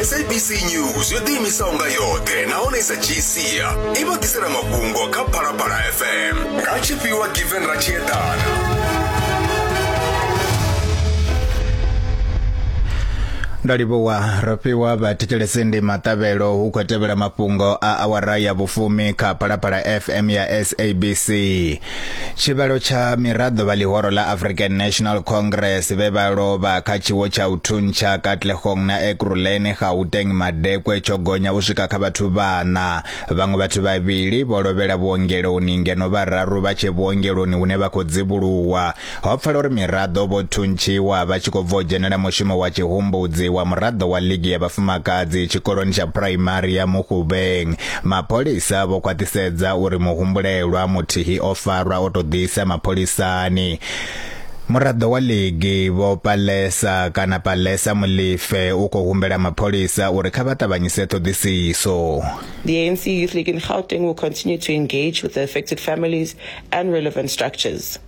sabc news yo ḓiimisaho nga yoṱhe nahone sa gsia i vha ḓisela mafhungo kha phalaphala fm nga tshifhiwa given ra tshi eḓana nda livhuwa ro fhiwa vhathetshelesi ndi maṱavhelo hu khou tevhela mafhungo a awara ya vhufumi kha phalaphala fm ya sabc tshivhalo tsha miraḓo vha ḽihoro ḽa african national congress vhe vha lovha kha tshiwo tsha u thuntsha katlehong na ekuruleni gauteng madekwe tsho gonya u swika kha vhathu vhana vhaṅwe vhathu vhavhili vho lovhela vhuongeloni ngeno vhararu vha tshe vhuongeloni hune vha khou dzivhuluwa Ho pfala uri miraḓo vho thuntshiwa vha tshi khou bva u dzhenela mushumo wa tshihumbudzi wa muraḓo wa ligi ya vhafumakadzi tshikoloni tsha phuraimari ya Mukgubeng. Mapholisa vho khwaṱhisedza uri muhumbulelwa muthihi o farwa o tou ḓisa mapholisani. Muraḓo wa ligi vho Palesa kana Palesa Mulife u khou humbela mapholisa uri kha vha ṱavhanyise ṱhoḓisiso. The ANC Youth League in Gauteng will continue to engage with the affected families and relevant structures.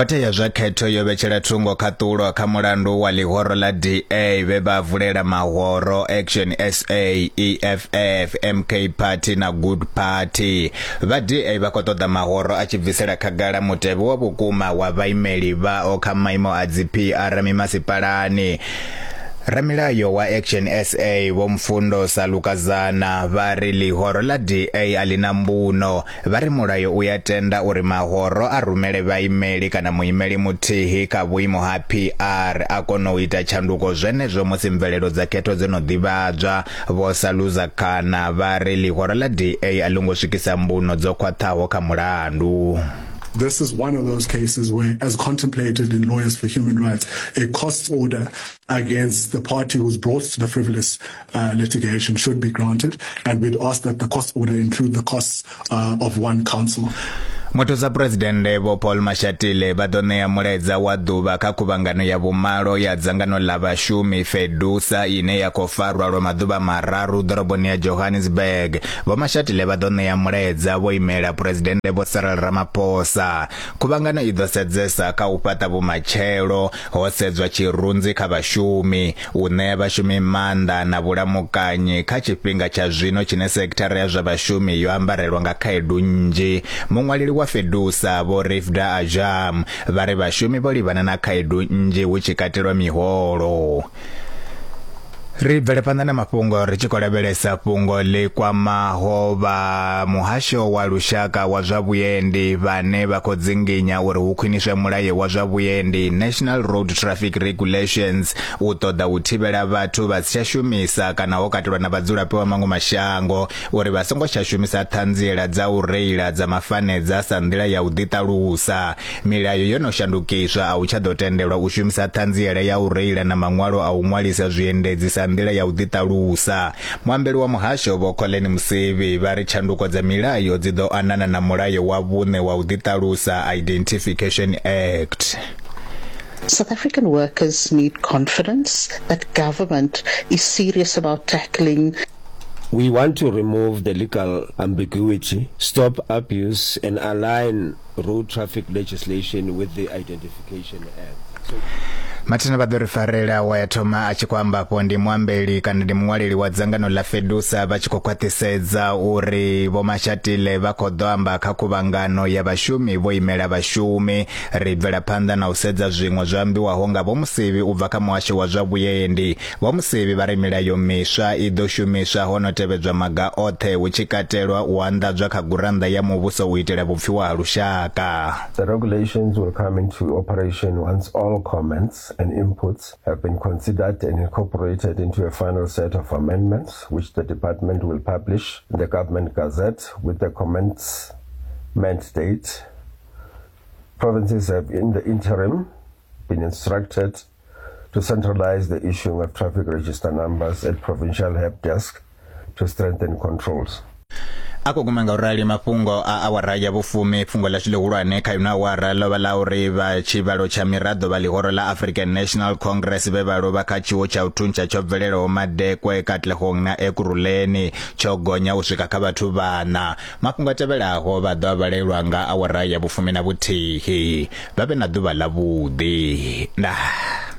khothe ya zwa khetho yo vhetshela thungo khaṱulo kha mulandu wa ḽihoro ḽa da vhe vha vulela mahoro action sa eff mk party na good party vha da vha khou ṱoḓa mahoro a tshi bvisela khagala mutevhe wa vhukuma wa vhaimeli vhao kha maimo a dzi pr mimasipalani Ramilayo wa Action SA Vho Mfundo Salukazana vha ri ḽihoro ḽa DA a ḽi na mbuno. Vha ri mulayo u ya tenda uri mahoro a rumele vhaimeli kana muimeli muthihi kha vhuimo ha PR a kona u ita tshanduko zwenezwo musi mvelelo dza khetho dzo no ḓivhadzwa. Vho Saluzakana vha ri ḽihoro ḽa DA a ḽo ngo swikisa mbuno dzo khwaṱhaho kha mulandu. This is one of those cases where, as contemplated in Lawyers for Human Rights, a cost order against the party who's brought the frivolous uh, litigation should be granted, and we'd ask that the cost order include the costs uh, of one counsel. muthusa phuresidennde vho paul mashatile vha ḓo ṋea mulaedza wa ḓuvha kha khuvhangano ya vhumalo ya dzangano ḽa vhashumi fedusa ine ya khou farwa lwa maḓuvha mararu ḓoroboni ya johannesburg Vho Mashatile vha ḓo ṋea mulaedza vho imela Phresidennde Vho Cyril Ramaphosa. Khuvhangano i ḓo sedzesa kha u fhaṱa vhumatshelo ho sedzwa tshirunzi kha vhashumi, u ṋea vhashumi maanḓa na vhulamukanyi kha tshifhinga tsha zwino tshine sekithara ya zwa vhashumi yo ambarelwa nga khaedu nnzhi. Muṅwaleli wa Fedusa, Vho Rifda Ajam, vha ri vhashumi vho livhana na khaedu nnzhi hu tshi katelwa miholo. Ri bvele phanḓa na mafhungo ri tshi khou lavhelesa fhungo ḽi kwamaho vha muhasho wa lushaka wa zwa vhuendi vhane vha khou dzinginya uri hu khwiniswe mulayo wa zwa vhuendi National Road Traffic Regulations u ṱoḓa u thivhela vhathu vha si tsha shumisa kana ho katelwa na vhadzulapo vha maṅwe mashango uri vha songo tsha shumisa ṱhanziela dza u reila dza mafanedza sa nḓila ya u ḓiṱalusa Milayo yo no shandukiswa, a u tsha ḓo tendelwa u shumisa ṱhanziela ya u reila na maṅwalo a u ṅwalisa zwiendedzi sa nḓila ya u ḓiṱalusa. Muambeli wa muhasho Vho Collen Msevi vha ri tshanduko dza milayo dzi ḓo anana na mulayo wa vhuṋe wa u ḓiṱalusa, Identification Act. South African workers need confidence that government is serious about tackling We want to remove the legal ambiguity, stop abuse and align Road Traffic Legislation with the Identification Act. mathina vha ḓo ri farela wa ya thoma a tshi khou amba afho ndi muambeli kana ndi muṅwaleli wa dzangano ḽa fedusa vha tshi khou khwaṱhisedza uri vhomashatile vha khou ḓo amba kha khuvhangano ya vhashumi vho imela vhashumi ri bvela phanḓa na u sedza zwiṅwe zwo ambiwaho nga vhomusevhi u bva kha muhasho wa zwa vhuendi Vho Musevhi vha ri milayo miswa i ḓo shumiswa ho no tevhedzwa maga oṱhe hu tshi katelwa u anḓadzwa kha gurannḓa ya muvhuso u itela vhupfiwa ha lushaka. The regulations will come into operation once all comments and inputs have been considered and incorporated into a final set of amendments which the department will publish in the Government Gazette with the commencement date. Provinces have in the interim been instructed to centralize the issuing of traffic register numbers at provincial help desk to strengthen controls. a khou guma nga u rali mafhungo a awara ya vhufumi fhungo ḽashu ḽihulwane kha ino awara ḽo vha ḽa uri vha tshivhalo tsha miraḓo vha ḽihoro ḽa african national congress vhe vha lovha kha tshiwo tsha u thuntsha tsho bvelelaho madekwe katlehong na ekurhuleni tsho gonya u swika kha vhathu vhana Mafhungo a tevhelaho vha ḓo a vhalelwa nga awara ya vhufumi na vhuthihi. Vha vhe na ḓuvha ḽavhuḓi. Ndaa.